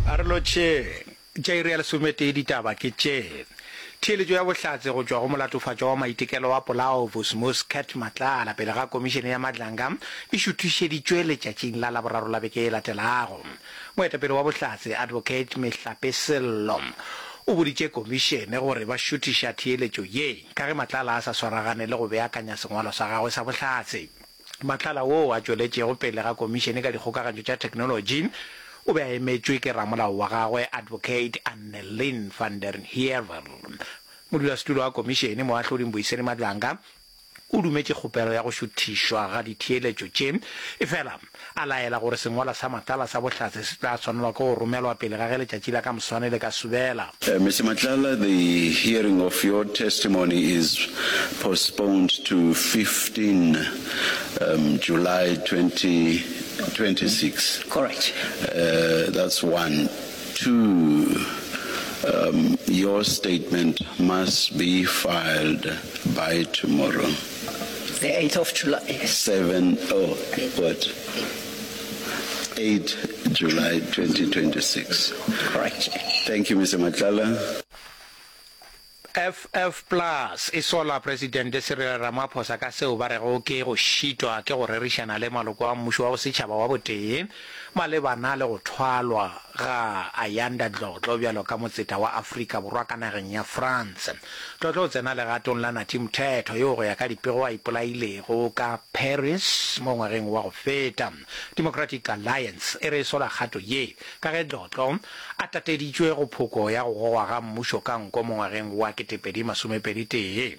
A re lotšheng. Tša iri ya lesometee ditaba ke tše. Theeletšo ya bohlatse go tšwa go molatofatšwa wa maitekelo wa Polao Vusmus Cat Matlala pele ga komišene ya Madlanga e šuthišeditšwe letšatšing la Laboraro la beke e latelago. Moetapele wa Bohlatse Advocate Mehlape Sello o boditše komišene gore ba šuthiša theeletšo ye ka ge Matlala a sa swaragane le go beakanya sengwalo sa gagwe sa bohlatse. Matlala woo a tšweletšego pele ga Komišene ka Dikgokagantšo tša Theknolotši o be a emetšwe ke ramolao wa gagwe Advocate Annelien van der Heever. Modulasetulo wa Komišene, Moahlodi Mbuyiseni Madlanga, o dumetše kgopelo ya go šuthišwa ga ditheeletšo tše, efela a laela gore sengwalwa sa Matlala sa Bohlatse se tla swanelwa ke go romelwa pele ga ge letšatši la ka moswane le ka subela. Mister Matlala, the hearing of your testimony is postponed to 15 um July 2026. Correct. Uh, that's one. Two, um your statement must be filed by tomorrow. The eighth of July. Seven oh what? Eight July 2026. Correct. Thank you Mister Matlala. FF plus e sola Presidente Cyril Ramaphosa ka seo ba rego ke go šitwa ke go rerišana le maloko a mmušo wa bosetšhaba wa botee. Malebana le go thwalwa ga Ayanda Dlotlo bjalo ka motseta wa Afrika Borwa ka nageng ya France, Dlotlo o tsena legatong la Nathi Mthethwa yoo go ya ka dipego a ipolailego ka Paris mo ngwageng wa go feta. Democratic Alliance e re e sola kgato ye ka ge Dlotlo a tateditšwe go phoko ya go gogwa ga mmušo ka nko mo ngwageng wa 2021.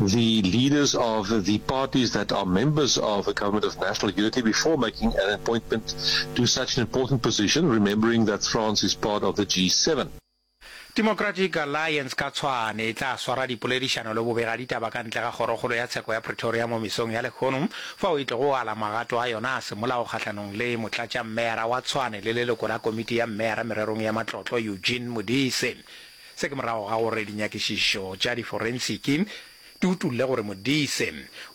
the leaders of the parties that are members of the Government of National Unity before making an appointment to such an important position, remembering that France is part of the G7. Democratic Alliance ka tshwane e tla swara dipoledišano le bobegaditaba ka ntle ga kgorokgolo ya tsheko ya Pretoria mo mesong ya lekgono, fao e tlogo ala magato a yona a semolao kgahlanong le motlatšammeyara wa Tshwane le leloko la komiti ya mmeyara mererong ya matlotlo Eugene Modise. Se ke morago ga gore dinyakišišo tša diforensiki di utolle gore Modise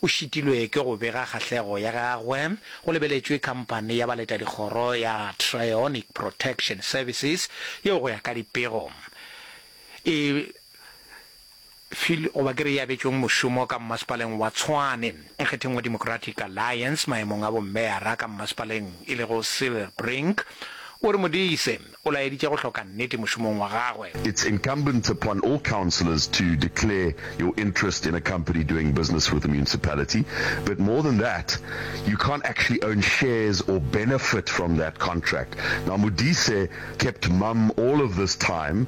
o šitilwe ke go bega kgahlego ya gagwe go lebeletšwe khamphane ya baletadikgoro ya Trionic Protection Services yeo go ya ka dipego e Phil goba ke re e abetšweng mošomo ka mmasepaleng wa Tshwane nkgetheng wa Democratic Alliance maemong a bommeyara ka mmasepaleng e lego Cyril Brink o re Modise o laeditše go hloka nnete mošomong wa gagwe. It's incumbent upon all councillors to declare your interest in a company doing business with the municipality, but more than that, you can't actually own shares or benefit from that contract. Now Modise kept mum all of this time,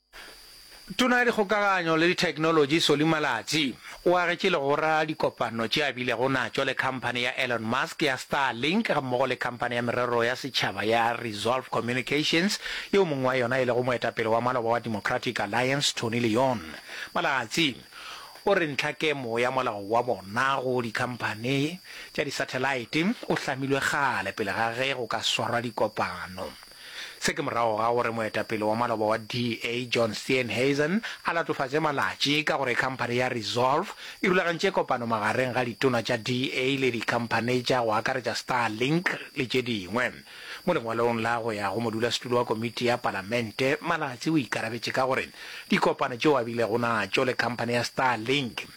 Tona ya Dikgokaganyo le Ditheknolotši Solly Malatsi o agetše legora dikopano tše a bilego natšo le khamphani ya Elon Musk ya Starlink gammogo le khamphani ya merero ya setšhaba ya Resolve Communications yeo mongwe wa yona e lego moetapele wa maloba wa Democratic Alliance Tony Leon. Malatsi o re ntlhakemo ya molao wa bona go dikhamphani tša disathelaete o hlamilwe kgale pele ga ge go ka swarwa dikopano. Se ke morago ga gore moetapele wa maloba wa DA, John Steenhuisen, a latofatše malatši ka gore khamphane ya Resolve e rulagantše kopano magareng ga ditona tša DA le dikhamphane tša go akaretša Starlink le tše dingwe. Mo lengwalong la go ya go modulasetulo wa komiti ya Palamente, Malatsi o ikarabetše ka gore dikopano tšeo a bilego natšo le khamphane ya Starlink,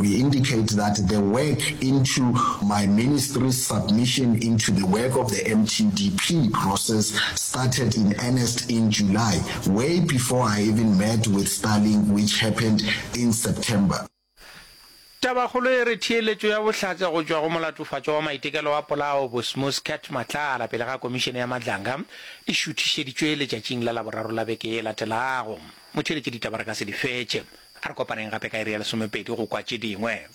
We indicate that the work into my ministry's submission into the work of the MTDP process started in earnest in July, way before I even met with Starlink which happened in September. Tabakgolo e re theeletšo ya bohlatse go tšwa go molatofatšwa wa maitekelo wa polao Bosmos Cat Matlala pele ga komišene ya Madlanga e šuthišeditšwe letšatšing la Laboraro la beke e latelago. Motheeletšeditaba re ka se di fetše. A re kopaneng gape ka iri ya lesomepedi go kwa tše dingwe.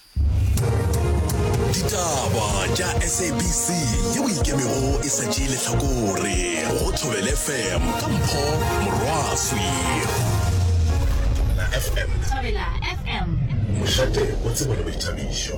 Ditaba tša SABC ye o ikemego e sa tšee lehlakore go Thobele FM ka Mpho Morwaswi. Thobela FM. Thobela FM. Mošate o tsebone boithabišo.